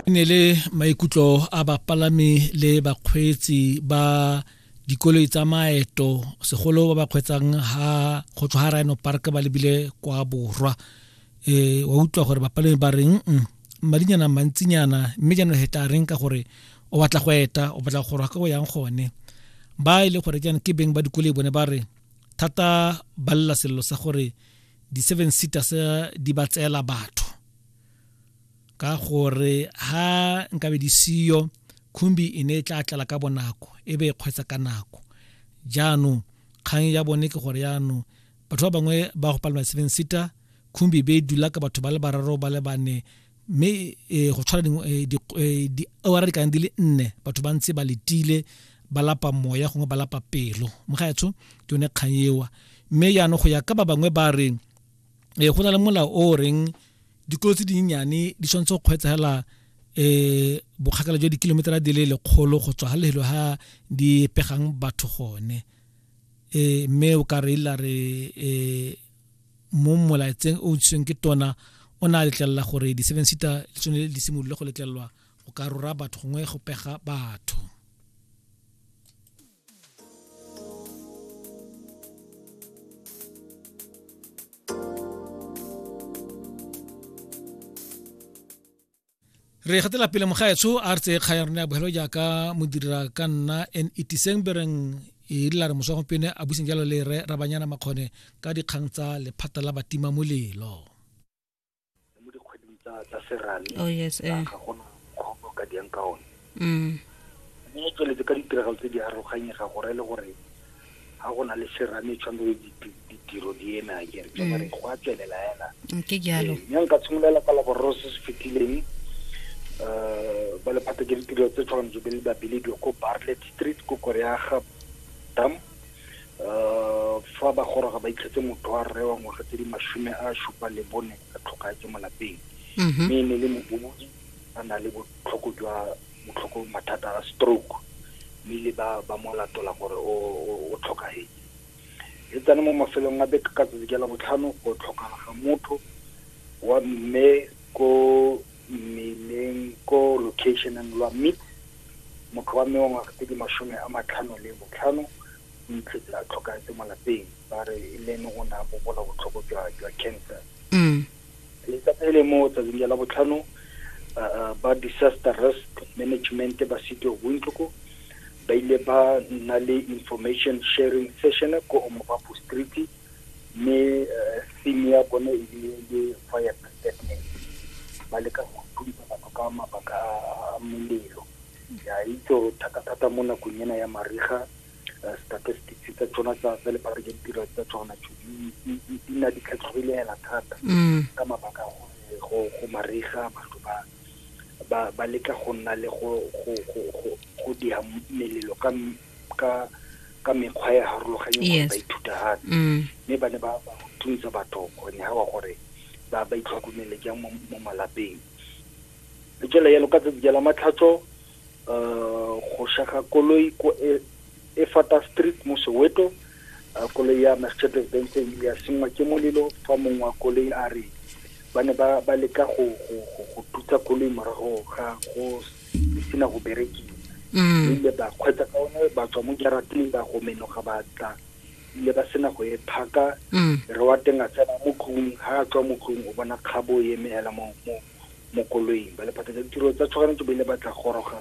ne le maikutlo a bapalami le bakgweetsi ba dikoloi tsa maeto segolo ba ba kgweetsang ha go tswa ga rhino park ba lebile kwa borwa um wa utlwa gore bapalami ba reng mm, madinyana mantsinyana mme jaanong he tla reng ka gore o batla go eta o batla go rwa ka go yang gone ba e le gore jaanong ke beng ba dikoloi bone ba re thata ba lela selelo sa gore di-seven seater se di ba tseela batho ka gore ha nkabe di siyo khumbi e ne e tla tlala ka bonako e be e kgwetsa ka nako jaanong kgang ya bone ke gore jaanong batho ba bangwe ba go palelwa seven seater khumbi be e dula ka batho ba le bararo ba le bane mme e, go tshwana e, e, diawara di kang di le nne batho ba ntse ba letile ba lapa moya gongwe ba lapa pelo mogaetsho ke yone kgang ewa mme jaanong go ya ka ba bangwe ba re go na le molao o reng dikolo tse dinyenyane di tshwanetse go kgweetsegela um bokgakala jwa dikilometera di le lekgolo go tswa ga lehelo ga di pegang batho gone um mme o ka re ila re um mo molaetseng o ntshitsweng ke tona o ne a letlelela gore di-seven seater le tsone di simolole go letlelelwa go ka rora batho gongwe go pega batho re gatela pele mogaetsho a re tseye kgaya rona ya bogelo jaaka modira ka nna and itiseng bereng e rile re moswa gompieno a buseng jalo le re rabanyana makgone ka dikgang tsa lephata la batima molelo mo dikgweding tsa tsa serame oh yes eh ga gona kgopo ka diang ka one mm mme e tsweletse ka ditiragalo tse di aroganyega gore le gore ga go na le serame tshwanetse diti- ditiro di eme a kere ke gore go a tswelela hela Mm, ke jalo Ee, mme nka tshimolola ka laboraro se se fetileng um ba lephata ke ditiro tse tshwanetse be le babiledi ko barlet street ko koreaga dam um fa ba goroga ba itlhetse motho wa rre wa ngwaga tse di masome a supa le bone a tlhokagetse mo lapeng mhm. mme e ne le mobobodi a na le botlhoko jwa botlhoko mathata a stroke mme le ba ba mo latola gore o tlhokagetse e tsane mo mafelong a beke ka tsatsi ke la botlhano go tlhokala ga motho wa mme ko mmeleng ko location-eng lwa Mid, motho wa mme wa ngwaga tse di masome a matlhano le botlhano o itlhetse a tlhokafetse mo lapeng ba re e le ene o ne a bobola botlhoko jwa jwa cancer Mm. letsatsi le le mo tsatsing ja la botlhano ah, ah, ba disaster risk management ba city of windhoek ba ile ba nna le information sharing session ko omobapo street mme theme ya bone e le le fire brigadier ba leka go thuntsa batho ka mabaka a molelo ya itse gore thata-thata mo nakong ena ya mariga eh, statistics tsa tsona tsa tsa lephata ja ditiro tsa tsona tso di- di di- di nna di tlhatlhogile hela thata mm. ka mabaka a gore go go mariga batho ba ba ba leka go nna le go go go go go diha melelo ka m- ka ka mekgwa e harologanye gore ba ithuta gape mm. mme ba ne ba thuntsa batho gore ne ga gore ba ba itlhokomele jang mo malapeng le tswela yalo ka tsatsi la matlhatso um go shaga koloi ko e, e fata street mo soweto uh, koloi ya mercedes benz e ile ya sengwa ke molelo fa mongwe wa koloi a re ba ne ba leka go tutsa koloi morago ga go e sena go berekiwa mm. ile ba kgwetsa ka one ba tswa mo jarateng ba go menoga ba tla ile ba sena go e phaka mm. re wa teng a tsena mo tlung ha a tswa mo tlung o bona kgabo e eme hela mo mo mo koloing ba lephatsa ditiro tsa tshogano ke ba ile ba tla goroga